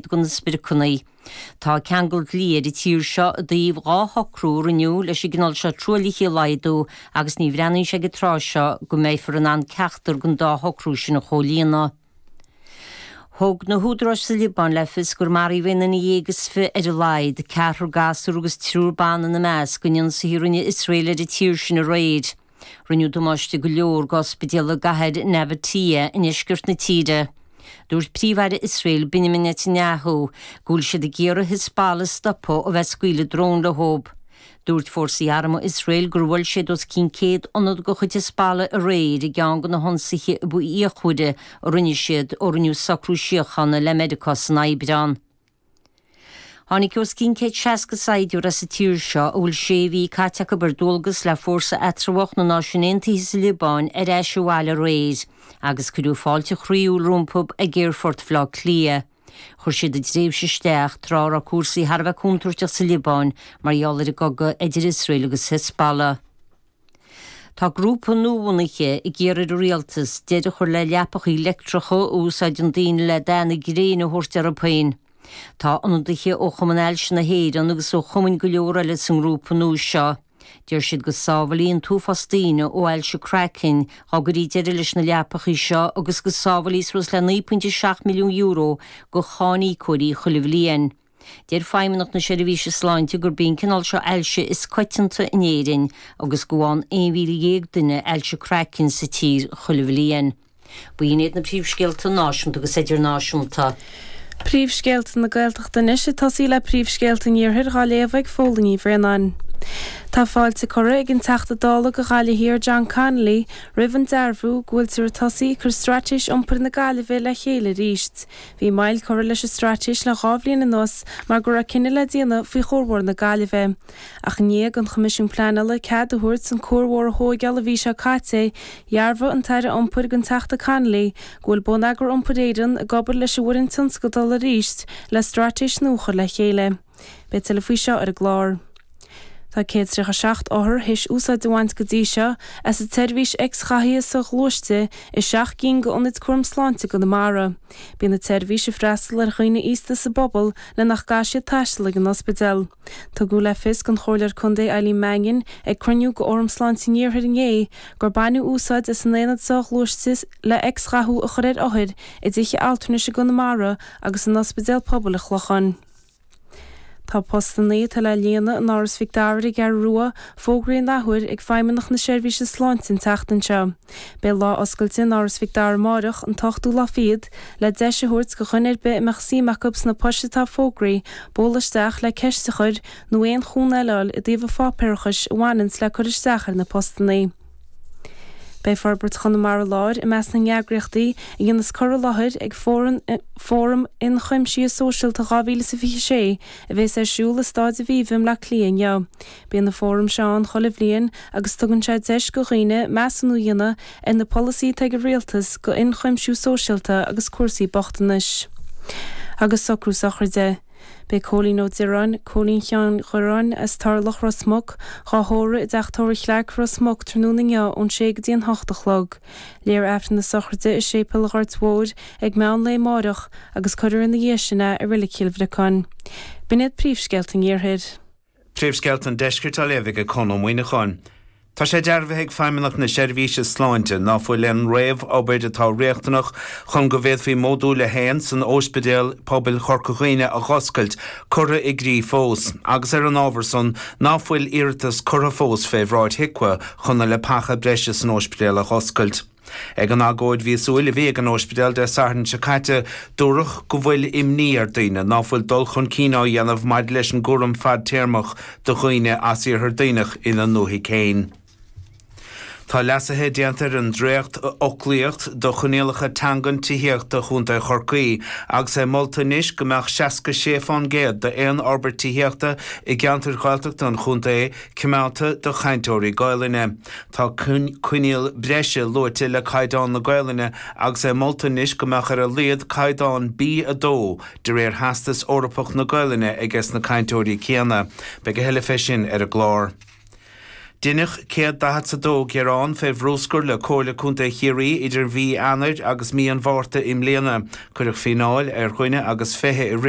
do na spriocanna. Tá ceangal dlí ar an tír seo i dtaobh dhá shocrú a rinneadh leis an gcineál seo truaillithe a laghdú agus ní bhreathnaíonn sé ag an tráth seo go mbeifear in ann ceachtar den dá shocrú sin a chomhlíonadh. Thug na húdaráis sa Liobáin le fios gur maraíodh aon nduine dhéag is fiche ar a laghad, ceathrar gasúr agus triúr ban ina measc, in ionsaithe a rinne Iosrael ar an tír sin aréir. Rinneadh damáiste go leor d'ospidéal i gcathair Nabatieh i ndeisceart na tíre. Dúirt Príomh-Aire Iosrael Benjamin Netanyahu go bhfuil siad ag iarraidh Hizbollah a stopadh ó bheith ag scaoileadh drón leob. Dúirt fórsaí armtha Iosrael gur bhuail siad os cionn 100 ionad de chuid Hizbollah aréir i gceann de na hionsaithe ab fhíochmhaire a rinne siad ó rinneadh socrú síochána le Meiriceá san Aibreán. Tháinig os cionn 160 saighdiúir as an tír seo, a bhfuil sé mhí caite acu ar dualgas le Fórsa Eatramhach na Náisiún Aontaithe sa Liobáin ar ais abhaile aréir, agus cuireadh fáilte chroíúil rompu ag Aerfort Bhleá Cliath. Chuir siad a dtréimhse isteach tráth a raibh cúrsaí thar a bheith contúirteach sa Liobáin mar gheall ar an gcogadh idir Iosrael agus Hezbollah. Tá grúpa nuabhunaithe ag iarraidh ar an rialtas deireadh a chur le leapacha leictreacha a úsáideann daoine le dath na gréine a thabhairt orthu féin. Tá ionadaithe ó Chumann Ailse na hÉireann agus ó chumainn go leor eile sa ngrúpa nua seo. Deir siad go sábhálfaí an t-uafás daoine ó ailse craicinn dá gcuirí deireadh leis na leapacha seo agus go sábhálfaí suas le €9.7 milliún do cháiníocóirí chuile bhliain. Deir Feidhmeannacht na Seirbhíse Sláinte gurb í an cineál seo ailse is coitianta in Éirinn agus go bhfaigheann 11,000 duine ailse craicinn sa tír chuile bhliain. B'in iad na príomhscéalta náisiúnta agus idirnáisiúnta. Príomhscéalta na Gaeltachta anois, ag tosaí le príomhscéalta an Iarthair, á léamh ag Fhaoileann Ní Bhraonáin. Tá fáilte curtha ag an Teachta Dála do Ghaillimh Thiar John Connolly roimh an dearbhú go bhfuiltear ag tosaí ag cur Straitéis Iompair na Gaillimhe le chéile arís. Bhí moill curtha leis an straitéis le dhá bhliain anuas mar go raibh cinneadh le déanamh faoi chuarbhóthar na Gaillimhe. Ach i ndiaidh don Choimisiún Pleanála cead a thabhairt an cuarbhóthar a thóigeáil an mhí seo caite, dhearbhaigh an tAire Iompair don Teachta Connolly go bhfuil Bonneagar Iompair Éireann ag obair leis an bhfoireann tionscadal arís le straitéis nua a chur le chéile. Beidh tuilleadh faoi seo ar an gclár. Tá 137 othar théis úsáid a bhaint go dtí seo as an tseirbhís x-ghathaithe so-ghluaiste i seacht gcinn d'ionaid cúraim sláinte i gConamara. Bíonn an tseirbhís ag freastal ar dhaoine aosta sa bpobal le nach gcaithfidh siad taisteal ag an ospidéal. Tugadh le fios don Chomhairleoir Contae Eileen Mannion ag cruinniú d'Fhóram Sláinte an Iarthair inné gur baineadh úsáid as an aonad so-ghluaiste le x-ghathú a chur ar othair i dtithe altranais i gConamara agus in Ospidéal Pobail an Chlocháin. Tá postanna atá le líonadh in Áras Mhic Dara ar an gCeathrú Rua fógraithe in athuair ag Feidhmeannacht na Seirbhíse Sláinte an tseachtain seo. Beidh lá oscailte in Áras Mhic Dara amárach, an t-ochtú lá fichead, le deis a thabhairt go dhuine ar bith a mbeadh suim acu sna poist atá fógraithe bualadh isteach le ceist a chur nó aon chúnamh eile a fháil i dtaobh an pháipéarachais a bhaineann le cur isteach ar na postannaí. Beidh Forbairt Chonamara Láir i measc na n-eagraíochtaí a dhéanas cur i láthair ag Fóram, Fóram Ionchuimsithe Sóisialta 2026 a bhéas ar siúl i Stáid Aviva i mBleá Cliath inniu. Bíonn an Fóram seo ann chuile bhliain agus tugann sé deis go dhaoine measúnú a dhéanamh ar na polasaithe atá ag an Rialtas go ionchuimsiú sóisialta agus cúrsaí bochtanais Agus socrú sochraide. Beidh Cóilín Ó Direáin, Cóilín Sheáin Dhireáin, as Turlach, Ros Muc, dhá thórramh i dTeach Tórraimh Chlarke, Ros Muc, tráthnóna inniu ón sé go dtí an hocht a chlog. Léifear Aifreann na sochraide i Séipéal Ghort Mhóir ag meán lae amáireach, agus cuirfear ina dhiaidh sin é i Reilig Chill Bhriocáin. Sin iad príomhscéalta an iarthair. Príomhscéalta an Deiscirt á léamh ag Conn Ó Muíneacháin. Tá sé dearbhaithe ag Feidhmeannacht na Seirbhíse Sláinte ná fuil aon réamhobair atá riachtanach chun go bhféadfaí Modúl a hAon in Óispidéal Pobail Chorca Dhuibhne a dh'oscailt curtha i gcrích fós agus ar an ábhar san ná fuil iarratas curtha fós fé bhráid HIQA chun na leapacha breise san óispidéal a dh'oscailt. Ag an agóid mhíosúil a bhí ag an óispidéal Dé Sathairn seo caite, dúradh go bhfuil imní ar dhaoine ná fuil dul chun cinn á dhéanamh maidir leis an gcúram fadtéarmach do dhaoine as Iarthar Duibhneach ina ndúthaigh féin. Tá leasuithe déanta ar an dréachtfhoclaíocht do choinníollacha teangan tithíochta Chontae Chorcaí agus é molta anois go mbeadh 66 fán gcéad d'aon fhorbairt tithíochta i gceantair Ghaeltachta an chontae coimeádta do chainteoirí Gaelainne. Tá coinníoll breise luaite le caighdeán na Gaelainne agus é molta anois go mbeadh ar a laghad caighdeán B2 de réir Theastas Eorpach na Gaelainne aige sna cainteoirí céanna. Beidh a thuilleadh fé sin ar an gclár. Deineadh céad daichead 's a dó gearán fé bhrúscar le Comhairle Contae Chiarraí idir mhí Eanair agus mí an Mhárta i mbliana. Cuireadh fíneáil ar dhuine agus fiche i rith na.